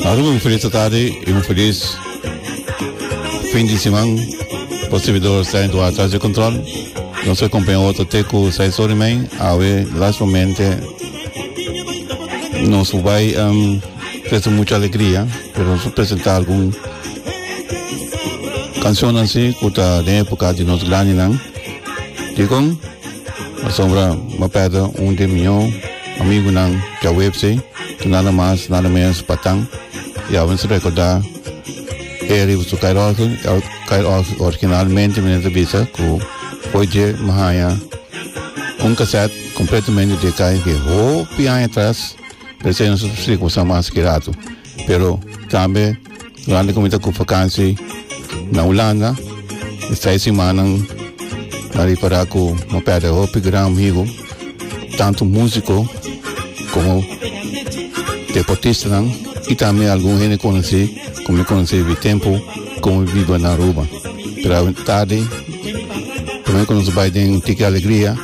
Aru mi feliz ta tarde y mi feliz fin de semana. Por servidor está en Duarte atrás de control. No soy compañero otro teco, sai sorry mij. Awe, last moment, eh, nos vai um, presta mucha alegría, pero nos presenta algún canción así, kuta de época de nos grande nan. Dikon, asombra, ma perda un de mi amigo nan, ja webse. Nada mas nada menos Patang y awe nos recorda e riba su Kyle Osgood Kyle Osgood originalmente menen ta bisa cu por dje mi haya un cassette completamente dje Kyle que hopi aña atras p'esei nos a sufri cu bo sa mas ki rato pero tambe Durante ku mi ta ku vakansi na Hulanda, e seis simannan a ripará ku mi pèrdè hopi gran amigu, tantu músiko komo deportistanan i tambe algun hende konosí ku mi konosí di tempu ku mi biba na Aruba. Pero tardi promé ku nos a bai den Tiki Alegria,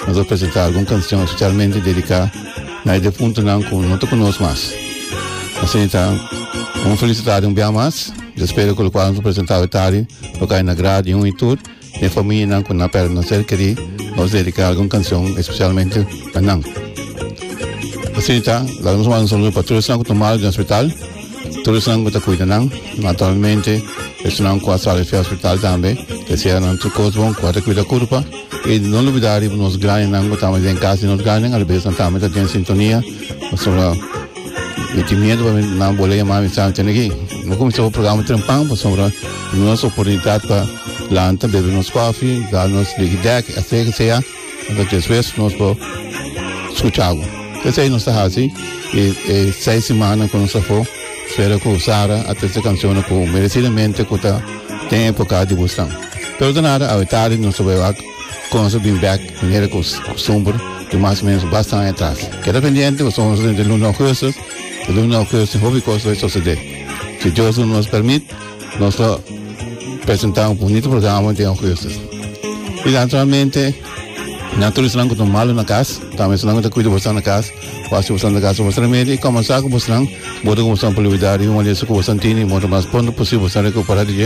nos a presentá algun kansion spesialmente dediká Na e difuntonan cu no ta cu nos mas. Asina ta, un felicidad un bia mas, di spera cu locual nos a presenta awe tardi lo cay na grada di un y tur di e familianan cu nan a perde nan ser querí. Nos dedica algun cancion especialmente pa nan. Asina ta, laga nos manda un saludo pa tur esnan cu ta mal den hospital, tur esnan cu ta cuida nan, naturalmente esnan cu a sali fi hospital tambe. Desea nan tur cos bon cu a recuida curpa. Y no lubida riba nos granenan cu tambe den cas di nos granen alabes nan tambe ta den sintonia. Pasobra mi tin miedo pa nan bol'e yama mi sa tene aki. Bo cuminsaba e programa trempan pasobra duna nos oportunidad pa lanta, bebe nos cofi, da nos ligi dek, etc. Que sea. Enta despues nos por scucha bo. Esey nos ta haci e seis semana cu nos afo. Spero cu Sara a trece cancionnan cu merecidamente cu ta den e poca di busnan. Pero ta nada, awe tardi nos ta wak wak Conzo bin back manera cu costumber di mas o menos basta aña atras. Keda pendiente cu Conzo ta den luna augustus, y luna augustus tin hopi cos loke socede. Si Dios lo nos permit nos lo presenta un bunito programa den augustus. Y naturalmente na tur esnan cu ta malo na cas, tambe esnan cu ta cuida boso na cas. Kua si boso ta gasta bo remedio y kòm a sa ku bosnan? Modo ku boso por liwidá di un maleso ku boso tin i modo mas pronto posibel boso ta rekuperá di dje?